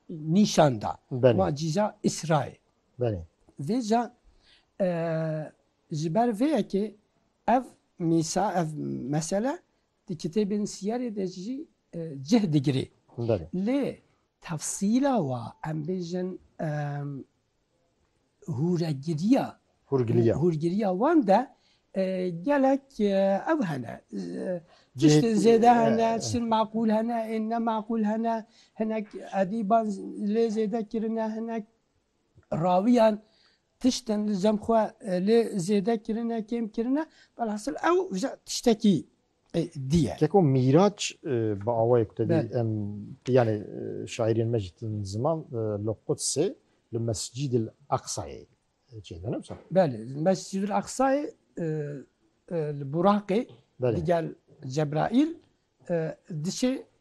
nîşan da. Ma cîza Îsra ye. Vê ca ji ber vê yekê ev mîsa, ev mesele di kitêbên sîyerê de jî cih digirê. Lê tefsîla wa em bêjin Hûregiriya Hûrgiliya. hûrgiriya wan de e, gelek e, ev hene. E, Tiştên Cihê- zêde hene, e, e. tiştên meqûl hene, ên nemeqûl hene, hinek edîban lê zêde kirine, hinek rawiyan tiştên li cem xwe e, lê zêde kirine, kêm kirine. Velhasil ew ji tiştekî diye. Keko Mîraç bi awayê ku te dî em yanê şaîrên me jî tên ziman li Qudsê li Mescîdil Eqsayê çêdin wisa? Belê, li Mescîdil Eqsayê li Buraqê digel Cebraîl diçê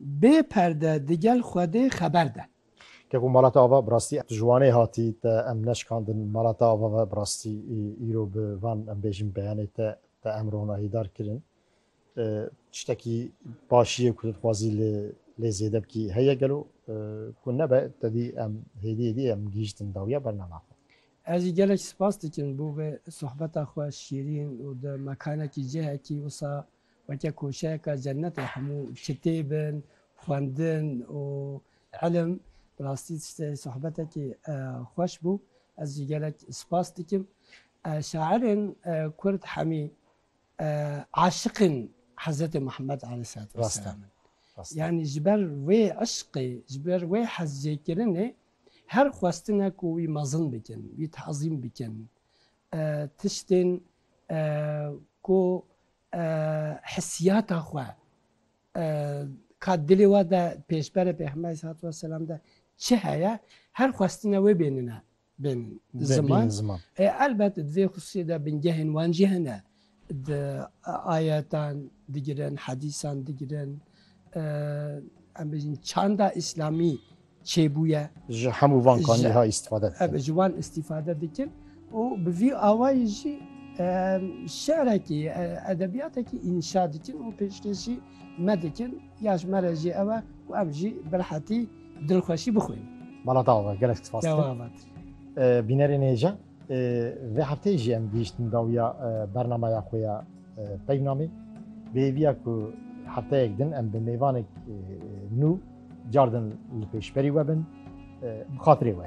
Bê perde digel Xwedê xeber de. Ke ku Malata Ava bi rastî ji Wanê hatî te em neşikandin Malata Ava ve bi rastî îro bi van em bêjin beyanê te te em ronahîdar kirin tiştekî başî ye ku tu dixwazî li lê zêde bikî heye gelo ku nebe tedî em hêdî hêdî em gihîştin dawiya bernama xwe. Ez jî gelek spas dikim bo vê sohbeta xwe şîrîn û di mekanekî cihekî wisa Weke koçeyeka cenetê hemû çitê bin, xwendin û ilim. Bi rastî tiştê sohbetekî xweş bû. Ez jî gelek spas dikim. Şairên kurd hemî aşiqên Hezretê Muhemmed aleyhîsselatû vesselam in. Yanî ji ber wê îşqê, ji ber wê hezjêkirinê her xwestine ku wî mezin bikin, wî teezîm bikin. Tiştên ku Hissiyata xwe ka dilê we de pêşberê Pêxemberê Selawat û Selam de çi heye her xwestine wê bênine bên ziman. Ê elbet di vê xusûsê de bingehên wan jî hene. Di ayetan digirin, hedîsan digirin, em bêjin çanda îslamî çêbûye. Ji hemû van kanî wiha îstîfade dikin. Ebe ji wan îstîfade dikin û bi vî awayî jî şerekî, edebiyatekî înşa dikin û pêşkêşî me dikin. Ya ji me re jî ew e ku em jî bi rehetî dilxweşî bixwînin. Mala te ava gelek spas dikim. Bînerê nêje. Vê hefteyê jî em gihîştin dawiya bernameya xwe ya Peyvnamê. Bi hêviya ku hefteyek din em bi mêvanek nû, cardin li pêşberî we bin, bi xatirê we.